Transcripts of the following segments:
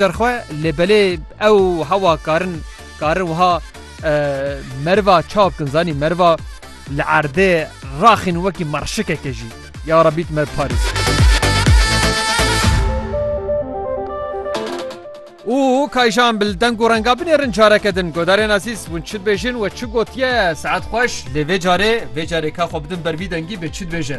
Derxwe lê belê ew hewa karin karin wiha merva çav kin zanî merva li erdê raxîn wekî marşikeke jî ya Rebî tu me bi parêz. û kayjan bil deng û renga binêrin careke din godarên azîz hûn çi dibêjin we çi gotiye saet xweş lê vê carê vê carê ka xwe bidin ber vî dengî bê çi dibêje.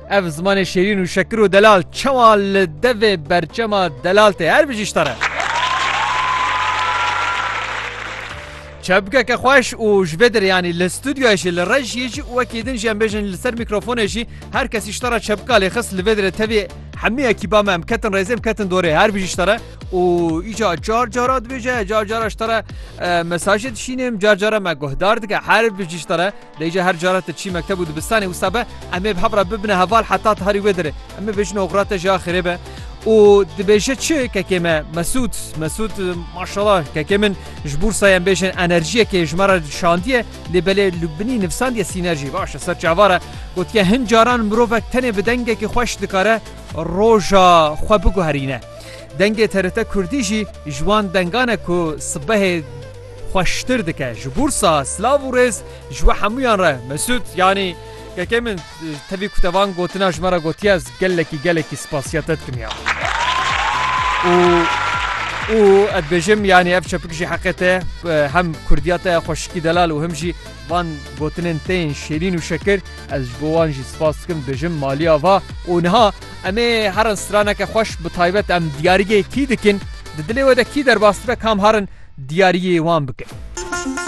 Ev zimanê şêrîn û şekir û delal çawa li devê berçema delal tê her bijî ji te re. Çepgeke xweş û ji vê derê yanî li studyoyê jî li rejiyê jî û wekî din jî em bêjin li ser mîkrofonê jî her kesî ji te re çepka lê xist li vê derê tevî hemî ekîba me em ketin rêzê em ketin dorê her bijî ji te re û îca car cara dibêje car cara ji te re mesajê dişînim car cara me guhdar dike her bijî ji te re Lê îcar her care ti çî mekteb û dibistanê wisa be em ê bi hev re bibine heval heta ti herî wê derê. Em ê bêjin oxira te jî axirê be. Û dibêje çi kekê me Mesûd, Mesûd maşala kekê min ji bûrsa em bêjin enerjiyekê ji me re şandiye lê belê li binî nivsandiye sînerjî. Baş e ser çavar e. Gotiye hin caran mirovek tenê bi dengekî xweş dikare roja xwe biguherîne. Dengê TRT Kurdî jî ji wan dengan e ku sibehê, xweştir dike ji Bursa silav û rêz ji we hemûyan re Mesut yanî kekê min tevî ku te van gotina ji me re gotiye ez gelekî gelekî spasiya te dikim ya û û ez bêjim yanî ev çepik jî heqê te hem kurdiya te xweşikî delal û him jî van gotinên te yên şêrîn û şekir ez ji bo wan jî spas dikim bêjim maliya va û niha em ê herin straneke xweş bi taybet em diyarîgê kî dikin Di dilê we de kî derbas dibe kam harin diyariyê wan bike.